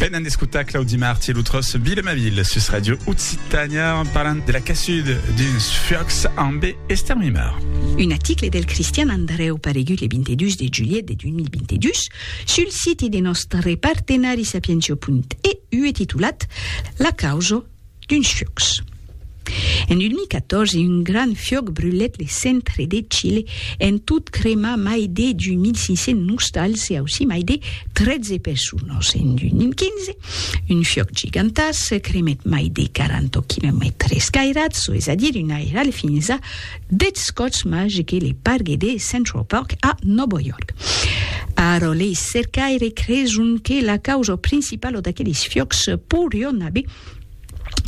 Venent d'escotar Claudi Martí e lo tròç Vila ma ville sus Radio Occitània en parlant de la cassud d'uns fuòcs ambe Esther Mimard. Un aticle del Cristian Andrèu paregut le 22 de julhet de 2022 sul siti de nòstre partenari sapientio.eu e titulat La causa D'uns fiòcs. En 2014, un grand fiòc brulèt le centre de Chile, en tot cremar mai de 2.500 nostals e aussí mai de 13 personas. En 2015, un fiòc gigantàs cremèt mai de 40 quilomètres cairats, çò es a dire un airal fins a Deth Scots Magical e Pargue de Central Park a Nòva York. Ara lei cercaires creson que la causa principala d'aqueles fiòcs poirion aver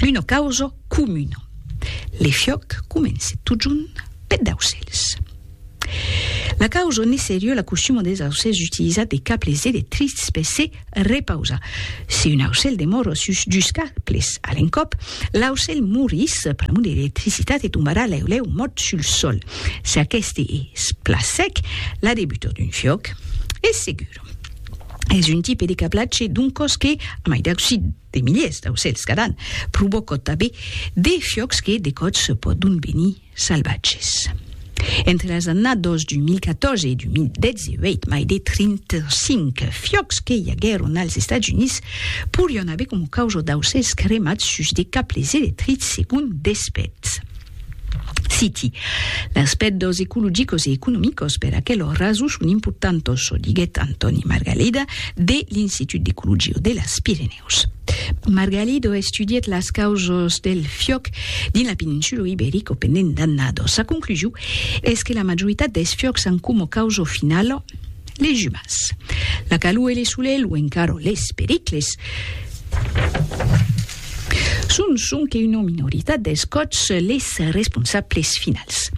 una causa comuna. Le fiòc comence totjorn peth d'aucèls. La causa ne serie la costuma des aucèls d'utilizar de cables electrics per se Repausa. Si un aucèl demòro sus dus cables a l'encòp, l'aucèl morís pr'amor de l'electricitat e tombarà lèu lèu mòrt sul sòl. Si aqueste es plan sec, la debutor d'un fiòc es segur. Es un tipe de cablatge d'un còs que, a mai d'ausir de miliers d'aucèls cada an, provòca tanben de fiòcs que de còps pòdon venir salvatges. Entre las annados 2014 e 2018, mai de 35 fiòcs que i aguèron als Estats Units porián aver coma causa d'aucèls cremats sus de cables electrics, segon Despètz. Citi, Las pèrdas ecologicos e economicos per aquelos rasos son importantos, çò diguèt Antòni Margalida de l'Institut d'Ecologia de las Pirenèus. Pòrtos. Margalido estudièt las causas del fiòc dins la peninsula Iberica pendent d'annadas. Sa conclusion es que la majoritat dels fiòcs an coma causa finala les umans. La calor e le solelh o encara les pericles son sonque una minoritat dels còps les responsables finals.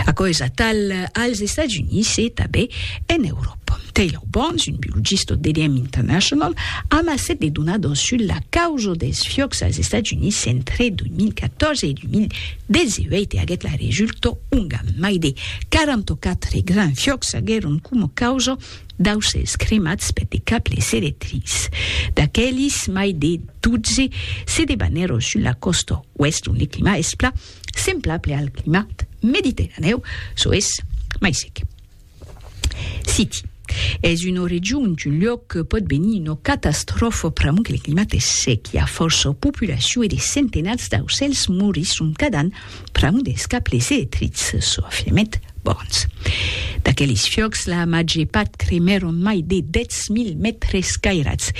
Aquò es atal als Estats Units e tanben en Euròpa. Pòm Taylor Barnes, un biologista au DDM International, amassèt de donadors sus la causa dels fiòcs als Estats Units entre 2014 e 2018 e aguèt la resulta onga mai de 44 grands fiòcs aguèron coma causa d'aucèls cremats per de cables electrics. D'aquelis, mai de 12 se debanèron sus la còsta oèst ont le climat es plan semblable al climat mediterranèu, çò es mai sec. City. Es una region d'un luòc que pòt venir una catastròfa pr'amor que le climat es sec, i a fòrça populacion e de centenats d'aucèls morisson cada an pr'amor dels cables electrics, çò afirmèt Burns. D'aqueles fiòcs, la màger part cremèron mai de 10.000 mètres cairats.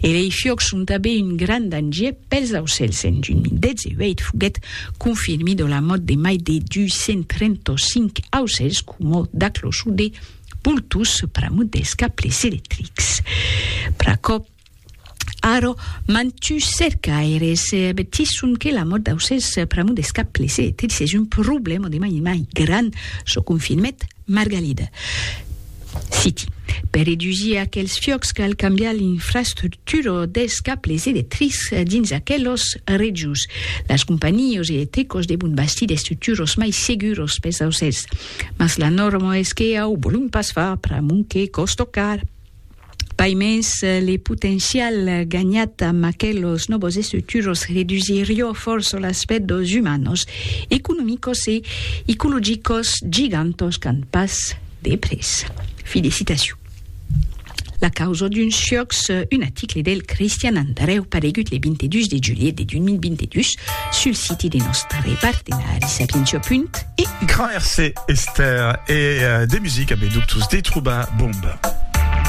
E lei fiòcs son tanben un grand danger pels aucèls. En 2018 foguèt confirmida la mòrt de mai de 235 aucèls coma d'acloçon de boltons pr'amont dels cables electrics. Pr'aquò, ara, mantuns cercaires avertisson que la mòrt d'aucèls pr'amont dels cables electrics es un problèma de mai mai grand, çò confirmèt Margalida. Citi, Per redusir aquels fiòcs cal cambiar l'infrastructura dels cables electrics dins aquelas regions. Las companhios e tecos devon bastir d'estructuros mai seguros pes aucèls, mas la norma es que au volum pas far pr'amont que còsto car. Pai mens, le potencial ganhat amb aquelos nòvos estructuros redusirió fòrça l'aspèct dos umanos, economicos e icologicos gigantos qu'an pas de près. Fi de citacion. La causa d'un siòc sus un aticle del Cristian Andrèu paregut le 22 de julhet de 2022 sul siti de nòstre partenari Sapientia. Punt e u. Gràirse Estèr e de musica be doctors de trobar bomba.